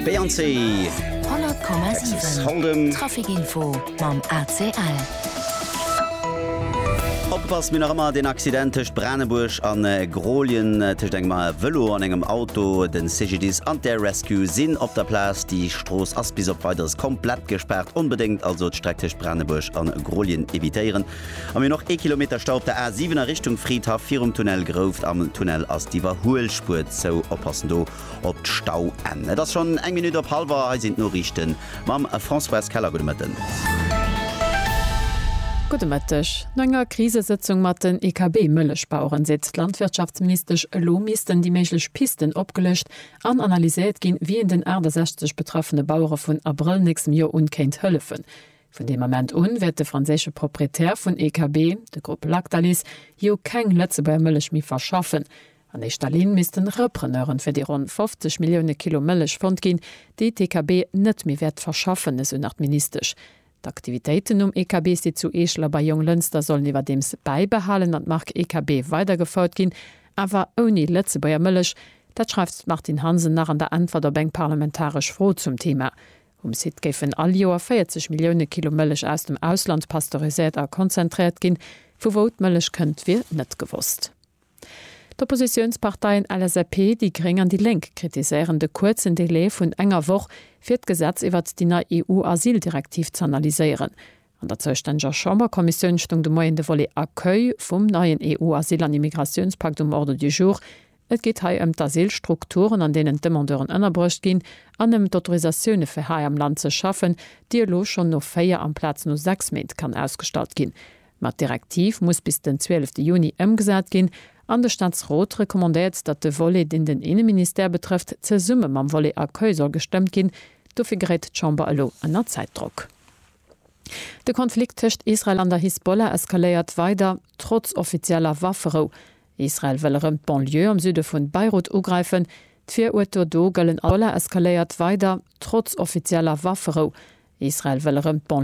Beyoncé. 100,7 Trafic info mam ACL. Opgepasst, mir nach ëmmer den Accident tëscht Branebuerg an äh, Grolien, äh, tëscht engem äh, Vëlo an engem Auto. Den CGDIS an d'Air Rescue sinn op der Plaz. Déi Strooss ass bis op Weideres komplett gespaart. Onbedéngt also d'Streck tëscht Branebuerg an Grolien evitéieren. A mir hunn och ee Kilometer Stau op der A 7 a Richtung Fridhaff virum Tunnel Grouft. Am Tunnel ass d'Iwwerhuelspuer zou. Oppassen do op d'Stauenn. Et ass schonn eng Minutt op hallwer. Hei sinn d'Noriichten mam Françoise Keller. Gudde Mëtten. Gudde Mëtteg. No enger Krisesëtzung mat den IKB-Mëllechbaueren seet d'Landwirtschaftsministesch, elo missten déi méiglech Pisten opgelëscht an analyséiert ginn, wien den 68 betraffene Bauere vun Abrëll nächstem Joer un kéint hëllefen. Vun deem Ament un wäert de franséische Proprietär vun EKB, de Grupp Lactalis, jo keng Lëtzebuerger Mëllech méi verschaffen. An éischter Linn missten Repreneure fir déi ronn 50 Millioune Kilo Mëllech fonnt ginn, déi d'EKB net méi wäert verschaffen, esou nach d'Ministesch. D'Aktivitéiten um EKB-Site zu Eeschel a bei Jonglënster sollen iwwerdeems bäibehalen an d'Mark EKB weidergefouert ginn, awer ouni Lëtzebuerger Mëllech. Dat schreift d'Martine Hansen nach an der Äntwert op eng parlamentaresch Fro zum Theema. Um Site géifen all Joer 40 Millioune Kilo Mëllech aus dem Ausland pasteuriséiert a konzentréiert ginn. Vu wou d'Mëllech kënnt, wier net gewosst. D'Oppositiounsparteien LSAP, déi gréng an déi lénk kritiséieren de kuerzen Delai vun enger Woch, fir d'Gesetz iwwert déi nei EU-Asyldirektiv z'analyséieren. An der zoustännëger Chamberkommissioun stoung de Moien de Volet Accueil vum neien EU-Asyl an Immigratiounspakt um Ordre du jour. Et geet hei ëm d'Asylstrukturen, an deenen d'Demandeuren ënnerbruecht ginn, an ëm d'Autorisatioune fir hei am Land ze schaffen, déi elo schonn no véier amplaz no sechs Méint kann ausgestallt ginn. Ma d'Direktiv muss bis den 12 Juni ëmgesat ginn, an de Staatsrot recommandéiert, datt de Volet, deen den Inneministère betrëfft, zesumme mam Volet Accueil soll gestëmmt ginn. Dofir geréit d'Chamber elo ënner Zäitdrock. De Konflikt tëscht Israel an der Hisbollah eskaléiert weider, trotz offizieller Wafferou. Israel wëll erëm d'Banlieue am Süde vun Beirut ugräifen. D'Virurteler do gëllen als Terrororganisatioun. D'Hisbollah eskaléiert weider, trotz offizieller Wafferou. Israel wëll erëm d'Banlieue am Süde vun Beirut ugräifen. D'Virurteler do gëllen als Terrororganisatioun.